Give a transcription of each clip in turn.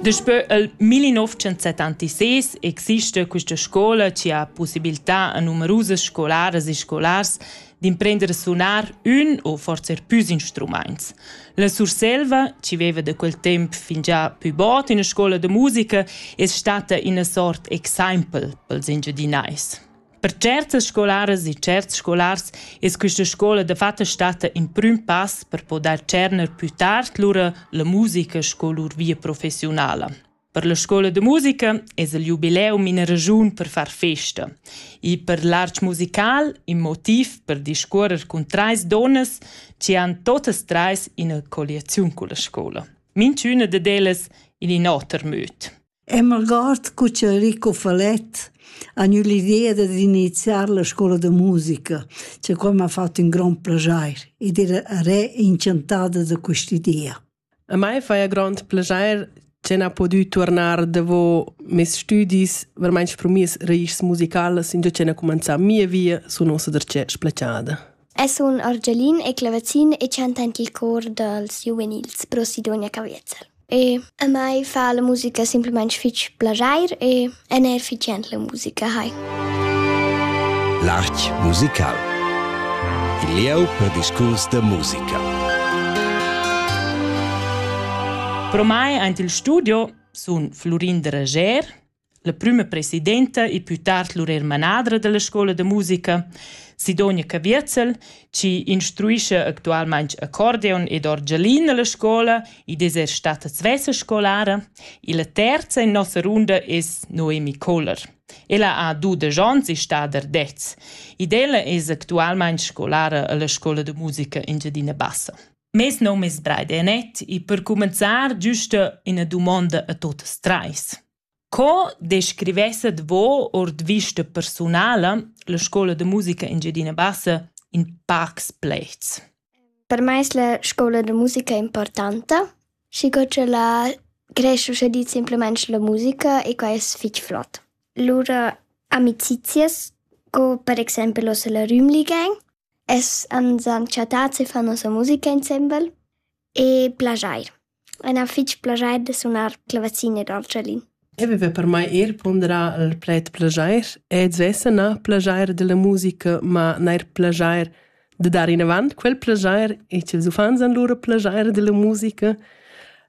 Daspö il 1976 exista questa scola che ha possibilità a numerusas scolaras e scolars d'imprender a suonar ün o forse püs instruments. La Surselva, che veva da quel temp fingià pü bod üna scola da musica, es stata üna sort exempel pels Engiadinais. Per certas scolaras e certs scolars es quista scoula dafatta statta ün prüm pass per podair tscherner pü tard lura la musica sco lur via professiunala. Per la scoula da musica es il jubileum ina ragiun per far festa. E per l'arch musical in motiv per discuorrer cun trais donnas chi han totas trais ina colliaziun culla scoula. Minchüna dad ellas in in oter möd. E m'algord cu che Enrico Falett ha gnü l'idea dad iniziar la scoula da musica, che quai m'ha fat ün grond plaschair ed era re inchantada da quist'idea. A mai faja grond plaschair che n'ha pudü tuornar davo meis stüdis vermaint sprumiss raischs musicalas, ingio che n'ha cumanzà mia via sun uossa darcheu splachada. El sun argialin e clavazin e chanta aint il cor dals giuvenils pro Sidonia Caviezel. E a mai fa la musica simplamaing fich plaschair e e n'ha eir fich jent la musica hai. L'art musical. Il lieu per discurs da musica. Pro mai aint il studio sun Flurin Dreger La prüma presidenta e pü tard lur eir manadra da la scoula da musica, Sidonia Caviezel, chi instruischa actualmaing accordeon ed orgelin a la scoula, id es eir stata svessa scolara, illa terza in nossa runda es Noemi Kohler. Ella ha dudesch ons e sta der dez. Ed ella es actualmaing scolara a la scoula da musica Engiadina Bassa. Mes nom es Braide Anet e per cumenzar güsta üna dumonda a tuotas trais. Co descrivesset vo ord vista persunala la scoula de musica Engiadina Bassa in pacs plets? Per me es la scoula de musica importanta, schi co che la creesce usche di simplement la musica e qua es fich flot. Lura amicizias, co per exempel ossa la Rümli Gang, Es ans han chattats e fan nossa musica insembel e plaschair. E na fich plaschair da sunar clavazin e dolcellin. Eu viva per mai eir ponderà il pled plaschair ed svessa na plaschair da la musica, ma neir plaschair da dar inavant quel plaschair e ch'els uffants han lura plaschair da la musica.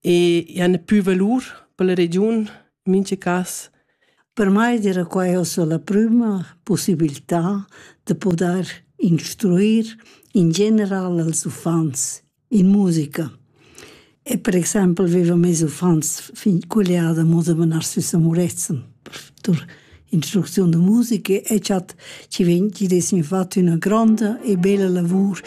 e i han più valur per la regiun, in mince cas. Per mai era quella la prima possibilità da poter instruir in general als uffants in musica. E per exempel avevo mes uffants fin colliada moda de menar sü Samuretzen per instrucziun de musica e ci, ci, ci dessi fatto una grande e bella lavor